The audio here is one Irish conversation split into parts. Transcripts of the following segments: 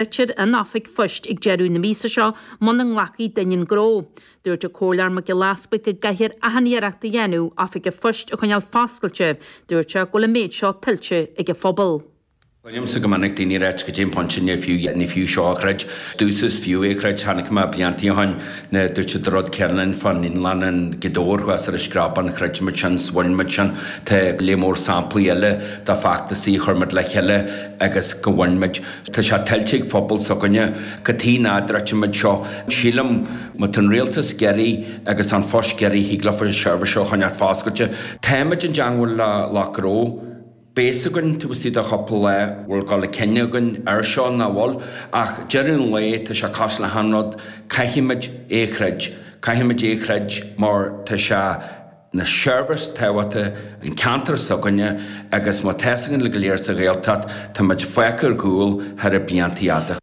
Druidfear an oifig phoist ag deireadh na míosa seo muna nglacfaidh duine an gnó. Dúirt an Comhairleoir Mac Giolla Easbuig go gcaithfear achan iarracht a dhéanamh oifig an phoist a choinneáil foscailte. Dúirt sé go bhfuil an méid seo tuillte ag an phobal. Cluinimse go minic daoine ag ráit caidé an pointe ní fiú ní fiú seo a throid. Dtús is fiú é a throid. Chonaic mé blianta ó shin nuair a dúirt siad an rud céanna linn fán naíolann i nGaoth Dobhair thuas ar an Screabán throid muid sin 's bhain muid sin. Tá lear mór samplaí eile de feachtasaí a chuir muid le chéile agus go bhain muid. Tá sé tuillte ag phobal s'againne cad chuige nach dtroidfimid seo, sílim. Má tá an rialtas ag iarraidh agus tá An Post ag iarraidh thig leo an seirbhís seo a choinneáilt foscailte. Táimid i dteangmháil le lucht gnó. Beidh a fhios againn taobh istigh de chupla lá an bhfuil dul chun cinn againn ar seo nó nach bhfuil, ach deireadh an lae tá sé cosúil le haon rud, caithfimid é a throid. Caithfimid é a throid mar tá sé. ina sheirbhís thábhachtach don cheantar s'againne agus mar atá a fhios againn go léir sa Ghaeltacht tá muid fágtha ar gcúl thar na bliantaí fada.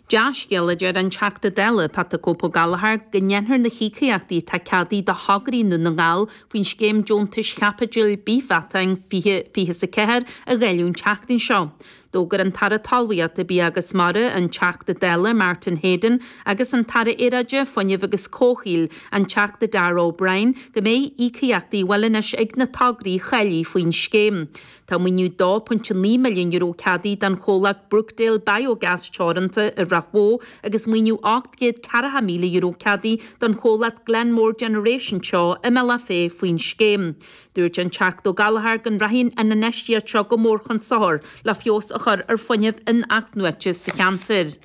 Dea-scéal, a deir an Teachta Dála Pat the Cope Ó Gallchóir, go ndéanfar na híocaíochtaí atá ceadaithe do thograí i nDún na nGall faoin Scéim Deontais Chaipitil Bithmheatáin 2024 a dháileadh an tseachtain seo. D'fhógair an tAire Talmhaíochta, Bia agus Mara, an Teachta Dála Martin Heydon agus an tAire Aeráide, Fuinnimh agus Comhshaoil, an Teachta Darragh O'Brien, go mbeidh íocaíochtaí á bhfáil anois ag na tograí a cháiligh faoin scéim. Tá maoiniú €2.9 milliún ceadaithe don chomhlacht Brookdale Biogas Teoranta i Ráth Bhoth agus maoiniú €840,000 ceadaithe don chomhlacht Glenmore Generation Teo i mBealach Féich faoin scéim. Dúirt an Teachta Ó Gallchóir go rachaidh an infheistíocht seo go mór chun sochar le feabhas a chur ar fuinneamh in-athnuaite sa cheantar.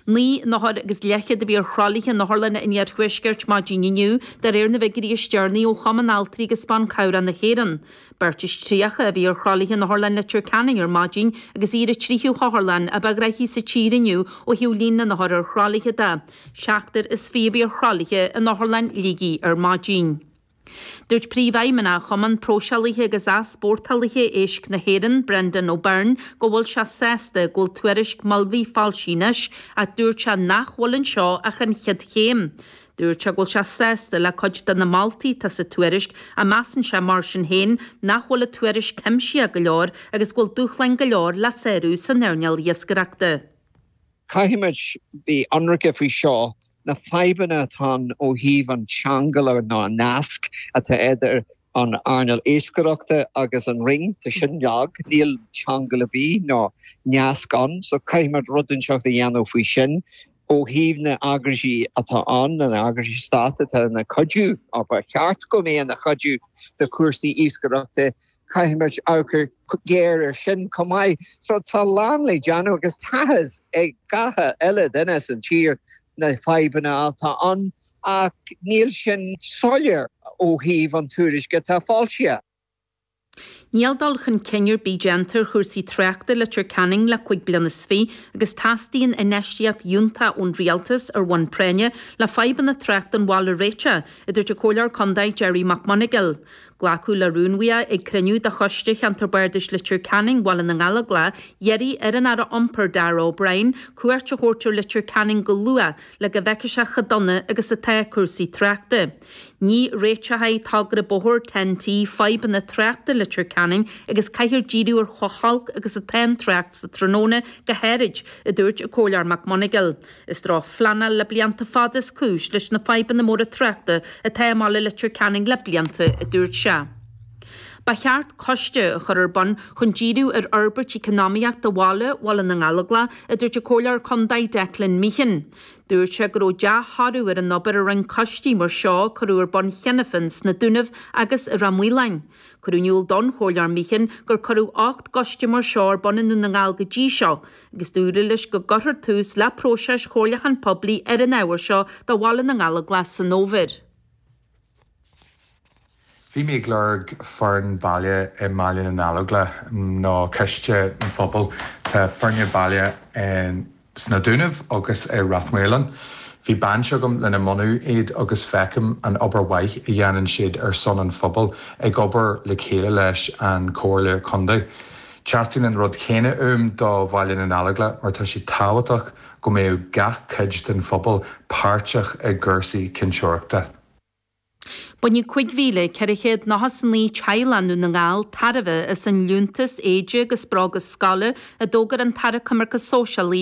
Naoi n-othar agus leathchéad a bhí ar thralaithe in otharlanna an iarthuaiscirt maidin inniu, de réir na bhfiguirí is deireanaí ó Chumann Altraí agus Ban Cabhrach na hÉireann. Beirt is tríocha a bhí ar thralaithe in Otharlann Leitir Ceanainn ar maidin agus í ar an tríú hotharlann ba ghnaithí sa tír inniu ó thaobh líon na n-othar ar thralaithe de. Seachtar is fiche a bhí ar thralaithe in Otharlann Shligigh ar maidin. Dúirt Príomhfheidhmeannach Chumann Próiseálaithe agus Easpórtálaithe Éisc na hÉireann, Breandán Ó Beirn, go bhfuil sé sásta go bhfuil tuairisc Mulvey foilsithe anois ach dúirt sé nach bhfuil anseo ach an chéad chéim. Dúirt sé go bhfuil sé sásta le cuid de na moltaí atá sa tuairisc ach measann sé mar sin féin nach bhfuil an tuairisc cuimsitheach go leor agus go bhfuil dúshláin go leor le sárú san earnáil iascaireachta. Caithfimid bheith ionraice faoi seo. na fadhbanna atá ann ó thaobh an cheangail nó an nasc atá idir an earnáil iascaireachta agus an Roinn, tá sin lag, níl ceangal ar bith ná nasc ann, so caithfimid rud inteacht a dhéanamh faoi sin. Ó thaobh na n-eagraisí atá ann, na n-eagraisí stáit atá ina cuidiú, ba cheart go mbeadh ina chuidiú do chúrsaí iascaireachta, Caithfimid amharc go géar ar sin chomh maith. So tá a lán le déanamh agus tá a fhios ag gach uile duine sa tír na fadhbanna atá ann ach níl sin soiléir ó thaobh an tuairisce atá foilsithe. Níl dul chun cinn ar bith déanta ar chúrsaí tráchta i Leitir Ceanainn le cúig bliana is fiche agus teastaíonn infheistíocht fhiúntach ón Rialtas ar bhonn práinne le fadhbanna tráchta an bhaile a réiteach, a dúirt an Comhairleoir Contae Gerry Mac Monagail. Glacadh le rún a bhí ag cruinniú de Choiste Cheantar Bardais Leitir Ceanainn Bhaile na nGallóglach ag iarraidh ar an Aire Iompair Darragh O'Brien cuairt a thabhairt ar Leitir Ceanainn go luath le go bhfeicfeadh sé chomh dona agus atá cúrsaí tráchta. Ní réiteoidh togra bóthair Ten T fadhbanna tráchta Leitir Ceanainn agus caithfear díriú ar chomh holc agus atá an trácht sa tráthnóna go háirid, a dúirt an Comhairleoir Mac Monagail. Is drochphleanáil le blianta fada is cúis leis na fadhbanna móra tráchta atá i mbaile Leitir Ceanainn le blianta, a dúirt sé. Ba cheart coiste a chur ar bun chun díriú ar fhorbairt eacnamaíochta bhaile Bhaile na nGallóglach, a dúirt an Comhairleoir contae Declan Meehan. Dúirt sé go raibh dea-thoradh ar an obair a rinne coistí mar seo a cuireadh ar bun cheana féin sna Dúnaibh agus i Rath Maoláin. Cuireadh in iúl don Chomhairleoir Meehan gur cuireadh ocht gcoiste mar seo ar bun i nDún na nGall go dtí seo, agus dúradh leis go gcuirfear tús le próiseas comhairliúcháin poiblí ar an ábhar seo do Bhaile na nGallóglach san fhómhar. Bhí mé ag lorg foireann baile i mBaile na nGallóglach nó coiste an phobail. Tá foirne baile sna Dúnaibh agus i Ráth Maoláin. Bhí baint agam lena mbunú iad agus feicim an obair mhaith a dhéanann siad ar son an phobail ag obair le chéile leis an Chomhairle Contae. Teastaíonn an rud céanna uaim do Bhaile na nGallóglach mar tá sé tábhachtach go mbeadh gach cuid den phobal páirteach i gcúrsaí cinnteoireachta. Bainfidh 5,499 teaghlach i nDún na nGall tairbhe as an liúntas éide agus bróga scoile a d'fhógair an tAire Coimirce Sóisialaí,